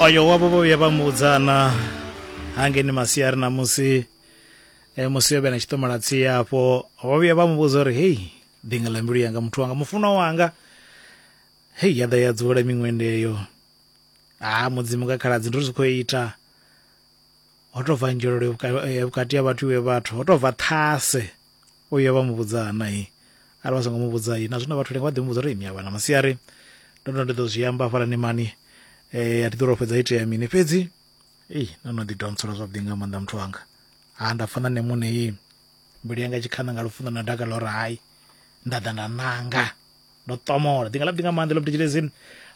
oyo wavho vho vhuya vha mu vhudzana hangeni masiari na musi e, musi yo vhe na tshiṱomola tsie afho vho vhuya vha mu vhudza uri hei ḓinga ḽa mbilu yanga muthu wanga mufunwa wanga hei ya ḓa ya dzula miṅwende eyo ha mudzimu nga khaladzi ndi ri zwi khou ita ho tou bva nzhelelo ya vhukati ha vhathu iwe vhathu ho tou bva ṱhase O ya vha mu vhudza ha nae arali vha songo mu vhudza na zwino vhathu lenga vha ḓi mu vhudza uri ni a vhana masiari ndo ndo ndi ḓo zwi amba hafhala ni mani eh a thi ḓo ro fhedza itea mini fhedzi ei no no ḓi donsela zwavhuḓi nga maanḓa muthu wanga ha nda pfha na nṋe muṋe mbilu yanga tshikhaṋa nga lufuno na dakalo uri hai nda ḓa nda nanga ndo ṱomola ndi nga lapi ndi nga maanḓa lobdi tshilezini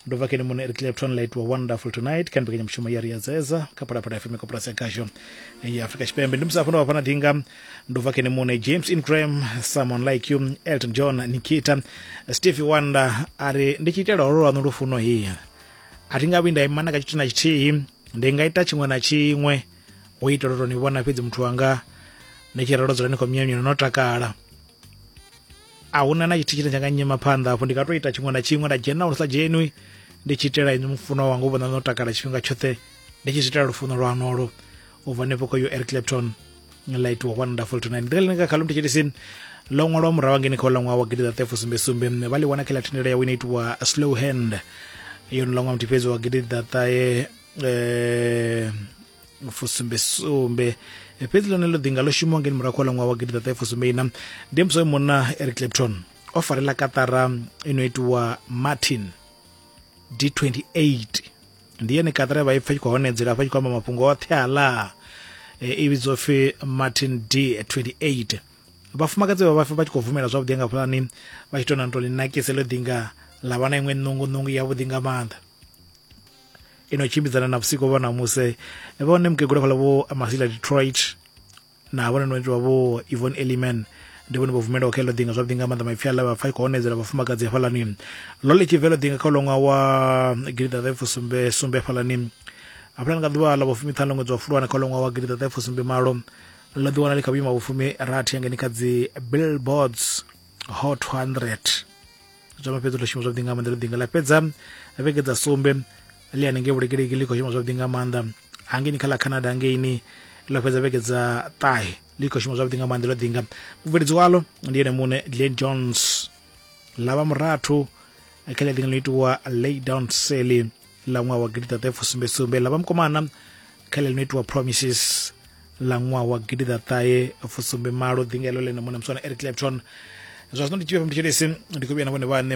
ndo bva kene muṋe eric lepton light wa wonderful tonight kha mbekanyamushumo ya ri ya dzedza kha phalaphala fm koporasi ya gasho ya afurika tshipembe ndi musafho ndo vha fana dinga ndo bva kene muṋe james ingram someone like you elton john nikita steve wonder a ri ndi tshi itela holo lwaṋu lufuno hi a thi nga vhuyi nda imana ka tshithu na tshithihi ndi nga ita tshiṅwe na tshiṅwe u itela u tou ni vhona fhedzi muthu wanga ni tshi ralo dzula ni khou myanyula no takala a hu na na tshithu tshine tsha nga nyima phanḓa hafho ndi nga to ita tshiṅwe na tshiṅwe nda dzhena lu sa dzhenwi ndi tshi itela inwi mufuno wanga u vhona no takala tshifhinga tshoṱhe ndi tshi zwi itela lufuno lwanolo u bva henefho ko yo eric clapton la itiwa one wonderful tonight ndi ḽine ka khalum thetshelesini ḽo ṅwalwa murahu ngeni kha ulaṅwa wa gidi ḓaṱefo sumbe sumbe vha ḽi wana kha ḽa thendelo yawe ine itiwa slow hand yo no ḽa ṅwa muthiphedzi wa gidi ḓaṱahe um eh, fusumbesumbe fhedzi ḽone ḽo ḓinga ḽo shumiwa ngeni murahu kha ṅwaha wa gidi ḓaṱahe fusumbeina ndi musi oyo munna eric clapton o farela katara i no itiwa martin d28 ndi yone katara vha i pfa tshi khou honedzela afha tshi khou amba mafhungo oṱhe aḽa e, i vhidzwa pfi martin d28 vhafumakadzi vha vhafa vha tshi khou bvumela zwavhuḓi nga pulani vha tshi tou na tou ḽi nakise ḽo ḓinga ḽa vha na iṅwe ṋungu ṋungu yavhuḓi nga maanḓa ino tshimbidzana na vhusiko vho namuse vhone mukegula fhala vho masila detroit na vhone no itiwa vho evon eliman ndi vhone vho bvumelaho kha iḽo ḓinga zwavhuḓi nga maanḓa maipfi aḽa vhapfa i khou onedzela vhafumakadzi hafhalani ḽo ḽi tshi bvelo ḓinga kha uḽoṅwa wa gidiḓaḓaipfu sumbe sumbe hafhalani hafhalani nga ḓuvha ḽa vhufumi ṱhanu ṅwedzi wa fulwana kha uḽoṅwa wa gidiḓaḓaipfu sumbe malo ḽo ḓiwana ḽi kha vhuima vhufumi rathi yangeni kha dzi billboards hot 100 zwa mafhedzi ḽo shuma zwavhuḓi nga maanḓa ḽo ḓinga ḽa fhedza vhege dza sumbe ḽi hanengei vhulekeleki ḽi khou shuma zwavhuḓi nga maanḓa hangeini kha ḽa canada hangeini ḽo fhedza vhege dza ṱahe ḽi khou shuma zwavhuḓi nga maanḓa ḽo ḓinga mubveledzi walo ndi ene muṋe glen jones ḽa vha murathu kha ḽi ḽiṅwe ḽo itiwa lay down sally ḽa ṅwaha wa gidiḓaṱahe fusumbesumbe ḽa vhamukomana kha ḽe ḽino itiwa promises ḽa ṅwaha wa gidiḓaṱahe fusumbe malo ḓinga elo ḽene muṋe muswana eric clapton zwa zwino ndi tshivhe ndi tshelesi ndi khou vhuya na vhone vhaṋe